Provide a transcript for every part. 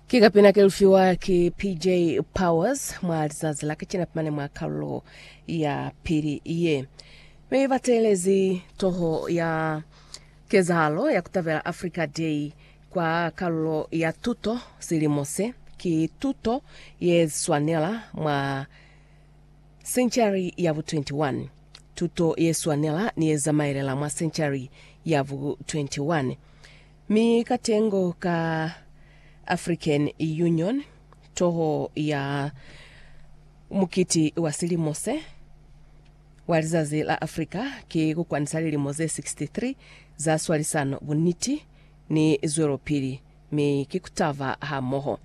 Ki kapina ke lufiwa ki PJ Powers mwa lizazi la kacina pimane mwa kalulo ya pili ye. Mi ba teelezi toho ya kezahalo ya kutabela Africa Day kwa kalulo ya tuto silimo se. Ki tuto ye swanela mwa senchari ya bu 21. Tuto ye swanela ni ye zamaelela mwa senchari ya bu 21. Mi katengo ka African Union, toho ya mukiti wa silimo se, wa Lizazi la Afrika, ki ku kwanisa lilimo ze 63 za swalisano, buniti, ni zwelopili, mi ki ku taba hamoho.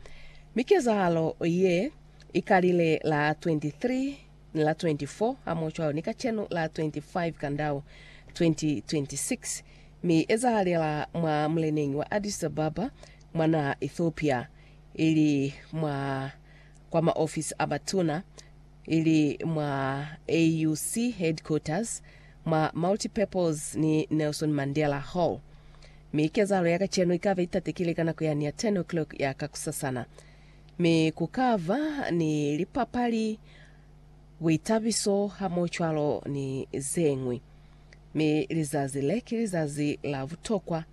Mi kezahalo ye i kalile la 23 ni la 24 hamo cwalo ni kacenu la 25 Kandau 2026, mi ezahalela mwa muleneñi wa Addis Ababa mwa naha Ethiopia, ili mwa kwa maofisi a batuna, ili mwa AUC headquarters, mwa Multipurpose ni Nelson Mandela Hall. Mi kezahalo ya kacenu ikabe itatekile ka nako yani ya 10 o'clock ya kakusasana. Mi ku ka ba ni lipapali, buitabiso hamocwalo ni zeñwi. Mi lizazi le ki lizazi la butokwa,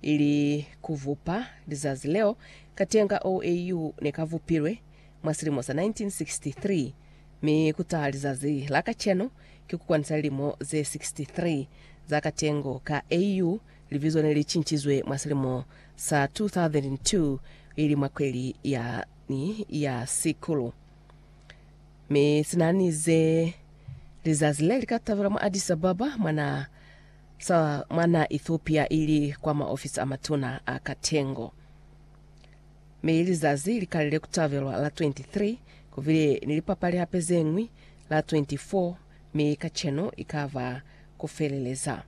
ili ku bupa lizazi leo. Katenga OAU ne ka bupilwe mwa silimo sa 1963, mi ku taha lizazi la kacenu ki ku kwanisa lilimo ze 63 za katengo ka AU. Libizo ne li cincizwe mwa silimo sa 2002 ili mwa kweli ya ni ya sikulu, mi sinanize lizazi le lika tabelwa mwa Addis Ababa mwa na sa mwa na Ethiopia ili kwa ma ofisi a matuna a katengo. Mi lizazi likalile kutabelwa la 23, kubile ni lipapali hape zeñwi la 24, mi kacenu ikaba kufeleleza.